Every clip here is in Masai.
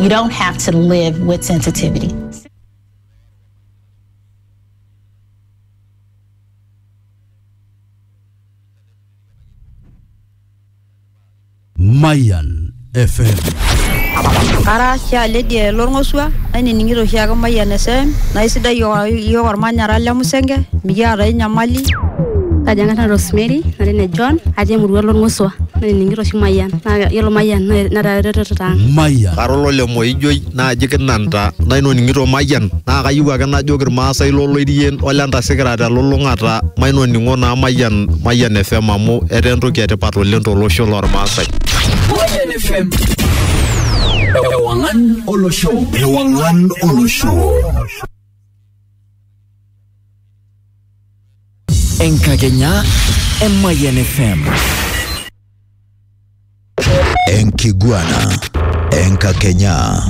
You don't have to live with sensitivity. Mayan FM. Ara Sha Lydia Lorng'osua, nainining'ito oshiake Mayian FM, naa isidai iyiook olmanyara le Musenge, mikiata ai nyamali. Kaji ang'ata Rosemary, natii ne John, atii emurua Lorng'osua, nainining'ito oshi Mayian. Naa yiolo Mayian netaa eretoto ang. Mayian. Kara olole Moijoi naaji kinanta naitoning'ito Mayian naa kayieu ake najoki Ilmaasai lo Loirien o le Ntasei kira te lulung'ata mainoning'o naa Mayian, Mayian FM amu etaa entoki e tipat oleng to losho loo Ilmaasai. Mayian FM. Ewang'an olosho. Ewang'an olosho. Enkakenya e Mayian FM. Enkiguana Enkakenya.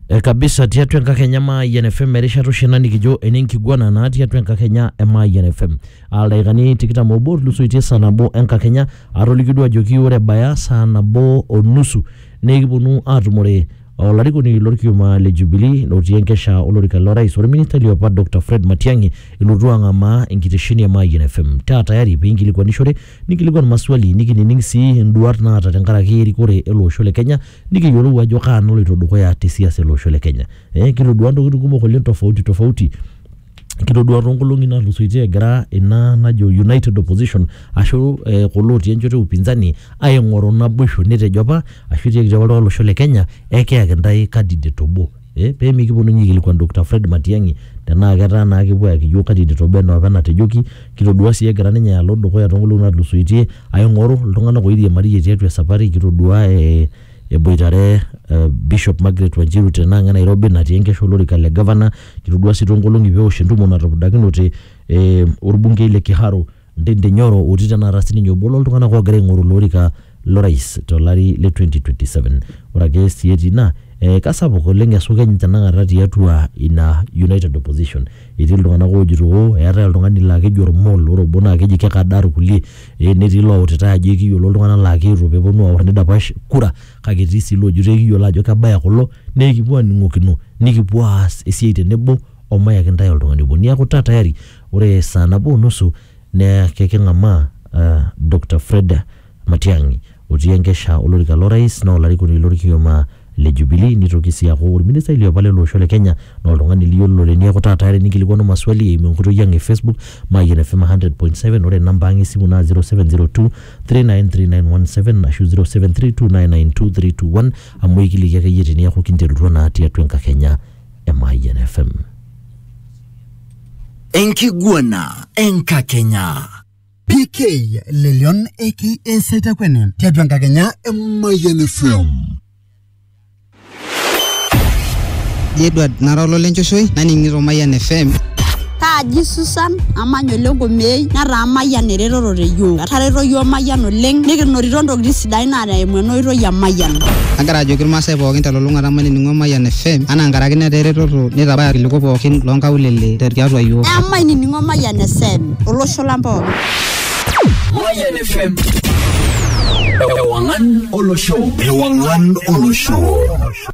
E kabisa tiatua enkakenya Mayian FM erishata oshi ena nikijo ene nkiguana naa tiatua enkakenya e Mayian FM. Aa ildaikani tikitam obo otulusoitie saa nabo enkakenya atoliki duo ajoki ore ebaya saa nabo o nusu nikiponu aatumore olarikoni lorkioma le Jubilee lotii enkesha olorika lo rais orministai liopa Dr. Fred Matiang'i ilotu ang'amaa enkitesheni e Mayian FM. Taa tayari piinkilikuanishore nikilikwan maswali nikinining sii induat naata tenkaraki erikore ele osho le Kenya nikiyiolou ajo kaa naloito dukuya te siasa ele osho le Kenya. Eh, kitodua ntokitin kumok oleng tofauti tofauti kitodua toonkolong'i natulusoitie egira ina najo united opposition ashu eh, kulo otii enchoto e upinzani aing'oru naboisho netejo apa ashu etiaki apa oltung'ani lolosho le Kenya ekiyaki intae candidate obo eh pee mikiponu ninye aikilikuan Doctor Fred Matiang'i tenaa ketaa naa kepuo ayaki iyiok candidate obo enaa opa enatejoki. Kitodua sii egira ninye alo dukuya too nkolong'i natulusoitie aing'oru iltung'anak oiriamariyie tiatua esapari, kitodua ee eboitare Bishop Margaret Wanjiru tena ang' e Nairobi natii enkesha olorika le governor, kitodua sii too nkolong'i peewosh entumo natupudakinote ee orbungei le Kiharu Ndindi Nyoro otii tenakata sininye obo loltung'anak oogira aing'oru ilo orika lorais tolari le 2027. Ore ake sii etii ina, eh, kasapuk oleng esukeny tenakata tiatua ina United Opposition. Etii iltung'anak oojito oo eetae oltung'ani laa keji Ormol, ore obo naa keji kekadaa irkulie, eh netii iloutitae ajo ekiyiolo iltung'anak laa keetuo peepwonu aorr nidapash kura kake etii sii iloojito ekiyiolo ajo kebaya kulo nekipwo aning'okino nikipwo aas esiai tenebo omayaki intae oltung'ani obo. Neeku taa tayari Ore saa nabo o nusu neya keking'amaa uh, Dokta Fred Matiang'i otii enkesha olorika lo rais naa olarikoni lorkioma le Jubilee nitoki sii aaku orministai liopa lele osho le Kenya naa oltung'ani liyiololo teniaku taata are ninkilikuanu maswali eimu enkoitoi ang e Facebook Mayian FM 100.7 ore namba ang esimu naa 0702 393917 ashu 0732992321 amu eikiliki akeyie teniaku kinterutua naa tiatua enkakenya e Mayian FM. enkiguana enkakenya PK Lelion aka Saitakwene tiatua enkakenya e Mayian FM. Edward nara ololenchoshoi naning'ito Mayian FM Kaaji Susan, amany ole Nkumei, netaa Mayian eretoto te yiok. Etareto yiok Mayian oleng, nikinotito ntokitin sidain naa eimu ena oitoi e Mayian. Agira ajoki ilmaasai pookin telulung'ata mainining'o Mayian FM anaa nkaraki netaa eretoto neitabaya ilkiliku pookin loo nkaulele te tiatua yiok. Emainining'o Mayian FM olosho lang pookin. Mayian FM. Ewang'an olosho. Ewang'an olosho.